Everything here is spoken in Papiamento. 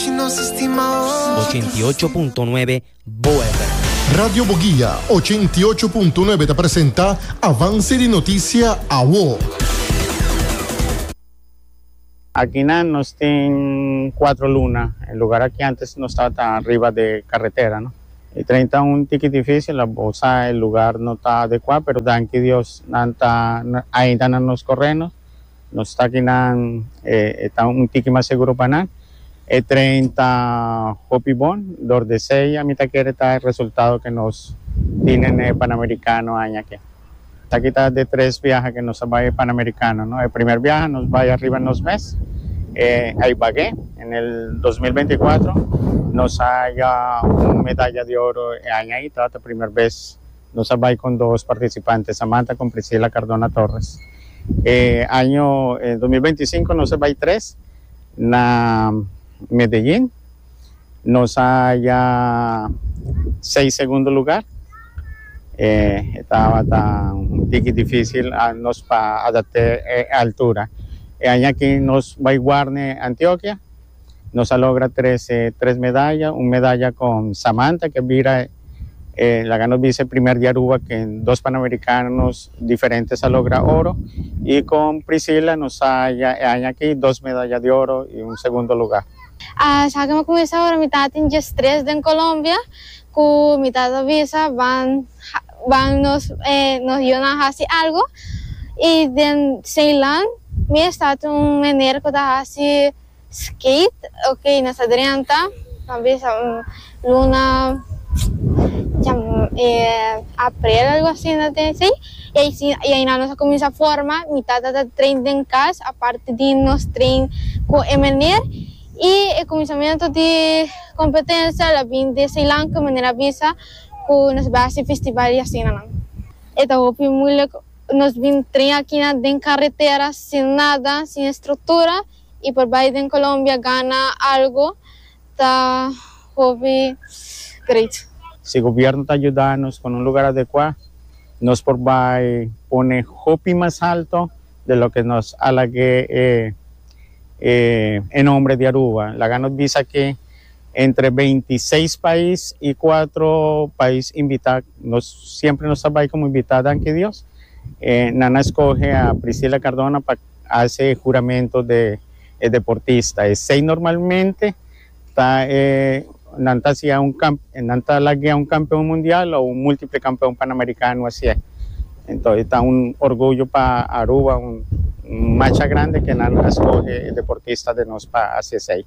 Ochenta i ocho punto nuebe Bo FM. Radio Boguia ochenta i ocho punto nuebe ta presenta Avance di Noticia Awo. Akinan nos tin cuatro luna, e lugar aki antes nos tabata riba de carretera no, e tren ta un tiki dificil a bosa e lugar no ta adecua pero danki Dios nan ta ainda na nos correno. Nos takinan e ta un tiki mas seguro pa nan. E train ta hopi bon, dor desei a mi ta kere ta e resultado ke nos tine n'e Panamericano aña ke. Taki ta de tres biaha ke nos a bai e Panamericano, no? E primer biaha nos bai ariba nos mes, e ai bag'é, en el dos mil beinti kuatro, nos a haña un medalla di oro e aña ei, tabata primer bes Nos a bai con dos participante Samantha con Priscila Cardona Torres. E año dos mil beinti sinku nos a bai tres na Medellin. Nos a haya seis segundo lugar. E tabata un tiki dificil nos pa adapte e altura. E aña aki nos bai guarne Antioquia. Nos a logra trese tres medaya, un medaya con Samantha que a bira e laga nos bisa e primer di Aruba que dos Panamericanos diferentes a logra oro y con Priscilla nos a haya e aña aki dos medaya di oro y un segundo lugar. A sa que mi a cuminsa ora mi ta tin diestres den Colombia cu mi ta ta bisa ban Ban nos nos yonan hasi algo y den Ceilan mi a start un meneer cu ta hasi skate ok nos ta drenta ta bisa un luna april algo asina te si y aisi y aina nos a cuminsa forma mi tata ta train den cas aparte di nos train cu e meneer y e cuminsamento di competencia la bin di Ceilan cu e meneer a bisa. ku nos bai hasi festival i asinanan. E ta hopi muilik nos bin tren akina den karetera sin nada, sin estruktura i por bai den Colombia gana algu ta hopi great. Si gobièrnu ta yuda nos ku un lugar adekuá nos por bai pone hopi mas alto di loke nos alag'é e nombre di Aruba. Laga nos bisa ke Entre beinti seis pais y cuatro pais invita, nos siempre nos ta bai como invita danki Dios, e nan a escoge a Priscila Cardona pa haci e juramento de e deportista, esey normalmente ta e nan ta hacia un cam, nan ta laguea un campeon mundial o un multiple campeon panamericano haci'e, ento e ta un orgullo pa Aruba, un macha grande que nan a escoge e deportista de nos pa haci esey.